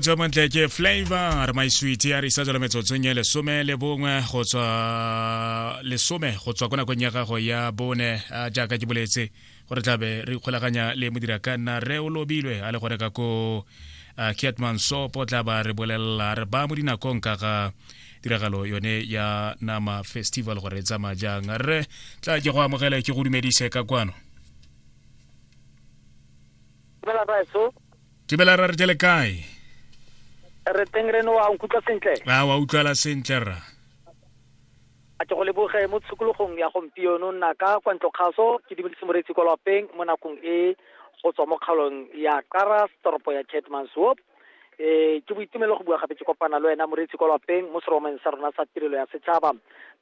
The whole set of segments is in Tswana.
tswa montle ke flavor my sweet a re sa tswela metsotsong ya lesome le bongwe go tswa lesome go tswa ko nakong ya gago ya bone jaaka ke boletse gore tlabe re ikgolaganya le modira ka nna re o lobilwe a le gore ka ko catman sopo tla ba re bolelela re ba mo dinakong ka ga tiragalo yone ya nama festival gore e tsamaya jang re tla ke go amogele ke go dumedise ka kwano Tebela ra re jale kae? Re teng re no wa nkutlwa sentle. A wa utlwala sentle ra. A ke go leboge mo tshikologong ya gompieno nna ka kwa ntlo kgaso ke dimedise moretsi kwa lapeng mo nakong e go tswa mo kgaolong ya Qara toropo ya Keetmanshoop. Eh ke boitumelo go bua gape ke kopana le wena moretsi kwa lapeng mo seromeng sa rona sa tirelo ya setšhaba.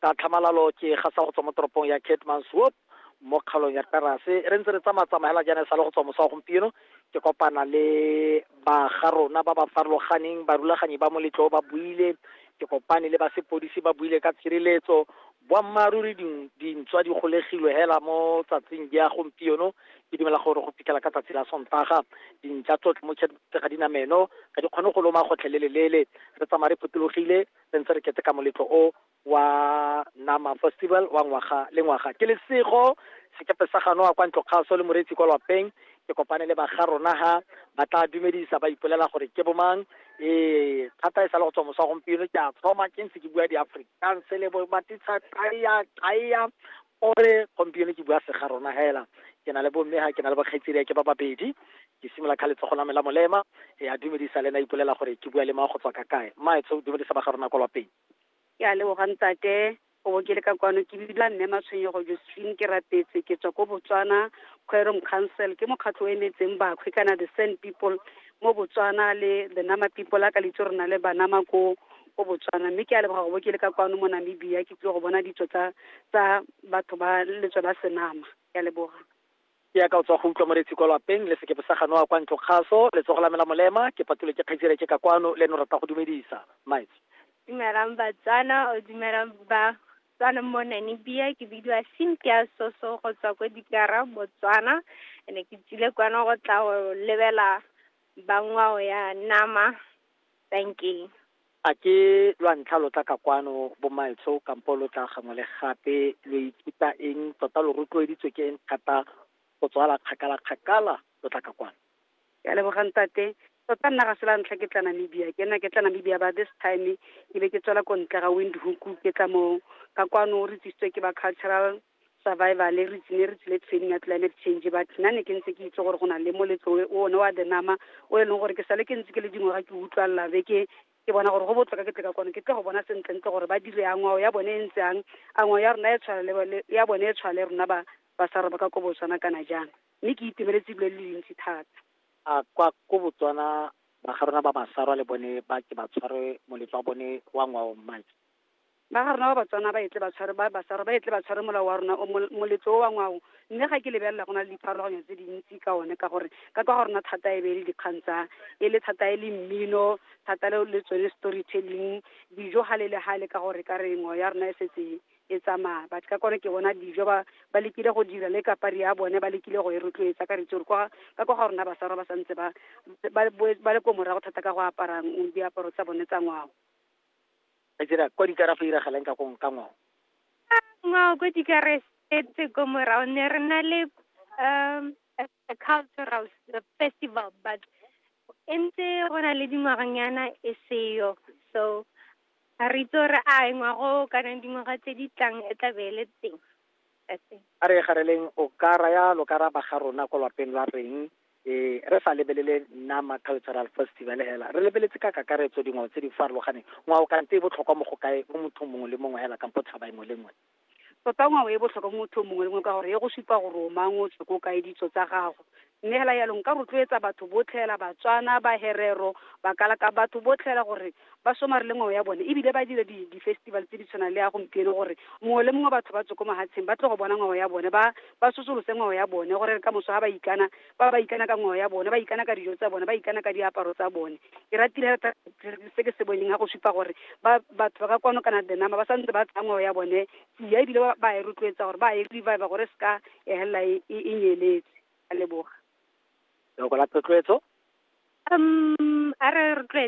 Ka tlhamalalo ke gasa go tswa mo toropong ya Keetmanshoop mo kgaolong ya Qarase re ntse re tsamaya tsamaya hela jaana e sale go tswa mosa wa gompieno ke kopana le ba ga rona ba ba farologaneng barulaganyi ba moletlo ba buile ke kopane le ba sepodisi ba buile ka tshireletso boammaaruri dintswa di golegilwe hela mo tsatsing di ya gompieno ke dumela gore go fitlhela ka tsatsi la sontaga dintša tsotlhe mo ga dinameno ga di kgone go loma gotlhelelelele re tsamaya re potologile re ntse re keteka moletlo o wa Nama Festival wa ngwaga le ngwaga. Ke lesego sekepe sa ganoa kwa ntlokgaso le moreetsi kwa lwapeng ke kopane le baga rona ha ba tla dumedisa ba ipolela gore ke bomang ee thata e sa le go tswa mosa gompieno ke a thoma ke ntse ke bua di-africans le bo matitsha taya taya ore gompieno ke bua sega rona hela ke na le bomme ha ke na le bokgetseria ke ba babedi ke simolola ka letsogo la me la molema e a dumedisa le na ipolela gore ke bua le ma go tswa ka kae mmaetsho dumedisa ba ga rona kwa lwapeng ke a leboga ntate o bo ke le ka kwano ke bibila mme matshwenyego josephine ke rapetse ke tswa ko botswana quorum council ke mokgatlho o emetseng bakhwe kana the sand people mo botswana le the nama people a ka litse rona le banama ko ko botswana mme ke a leboga go bo ke le ka kwano mo namibia ke tlile go bona ditso tsa tsa batho ba letso la senama ke a leboga Ke yaka o tswa go utlwa moretsi kwa lwapeng, le sekepe sa ganoa kwa ntlo kgaso, letsogo la me la molema, ke patulwe ke kgaitsedi reke ka kwano, le eno rata go dumedisa. Maitse. Dumelang Batswana, o dumela ba Tswana mo Namibia, ke bidiwa Cynthia Soso go tswa ko Dikara, Botswana. Ene ke tsile kwano go tla go lebela ba ngwao ya nama. Dankie. A ke lwa ntlha lo tla ka kwano, bommaetsho, kampo lo tla gangwe le gape? Lo ithuta eng? Tota lo rotloeditswe ke eng thata go tswala kgakala kgakala lo tla ka kwano? Ke a leboga ntate. Tota nna ga se la ntlha ke tla Namibia. Ke nna ke tla Namibia but this time ke be ke tswela ko ntle ga Windhoek ke tla mo ka kwano re tsisitswe ke ba cultural survival re tsile re tsile training ya climate change but nna ne ke ntse ke itse gore go na le moletlo o one wa the nama o e leng gore ke sale ke ntse ke le dingwaga ke utlwalela be ke ke bona gore go botlhoka ke tle ka kone ke tle go bona sentlentle gore ba dire yang ngwao ya bone e ntse yang a ngwao ya rona e tshwanele ya bone e tshwanele rona ba ba sa roba ka ko botswana kana jang mme ke itemeletse dilo le dintsi thata a kwa ko botswana ba ga rona ba basarwa le bone ba ke ba tshware moletlo wa bone wa ngwao mmake Ba ga rona ba Batswana ba etle ba tshware ba basarwa ba etle ba tshware molao wa rona o mol- moletlo o wa ngwao mme ga ke lebelela go na le dipharologanyo tse dintsi ka one ka gore ka kwa ga rona thata e be e le dikgang tsa e le thata e le mmino thata le le tsone story telling dijo gale le gale ka gore ka re ngwao ya rona e setse e tsamaya but ka kone ke bona dijo ba ba lekile go dira le kapari ya bone ba lekile go e rotloetsa ka retse gore kwa ka kwa ga rona basarwa ba santse ba ba boe- ba le ko morago thata ka go aparang diaparo tsa bone tsa ngwao Re dira kwa dikara fa iragalang ka kong ka ngwao. Ngwao kwa dikara setse ko morao ne re na le um a cultural festival but e ntse go na le dingwaganyana e seyo so ga re itse gore a ngwago kana dingwaga tse di tlang e tla be e le teng. A re gareleng o ka raya lokaraba ga rona ko lwapeng lwa reng e re sa lebelele Nama Cultural Festival hela. Re lebeletse ka kakaretso dingwao tse di farologaneng. Ngwao kante e botlhokwa mo go kae mo mothong mongwe le mongwe hela kampo tshaba engwe le ngwe. Tota ngwao e botlhokwa mo mothong mongwe le mongwe ka gore e go supa gore o mang, o tswa ko kae, ditso tsa gago. Mme hela yalo nka rotloetsa batho botlhe hela Batswana, Baherero, Bakalaka, batho botlhe hela gore ba somarele ngwao ya bone ebile ba dire di, di-festival tse di tshwanang le ya gompieno gore mongwe le mongwe batho ba tswe ko mahatsheng ba tle go bona ngwao ya bone, ba ba sosolose ngwao ya bone gore ka moso ha ba ikana ba ba ikana ka ngwao ya bone, ba ikana ka dijo tsa bone, ba ikana ka diaparo tsa bone. Ke ratile hela thata se ke se boneng ha go supa gore ba batho ba ka kwano kana the number ba santse ba tsaya ngwao ya bone ya ebile ba ba e rotloetsa gore ba e revive gore e seka ya helela e e- e nyeletse a leboga loko la tlotloetso um a re rotloetse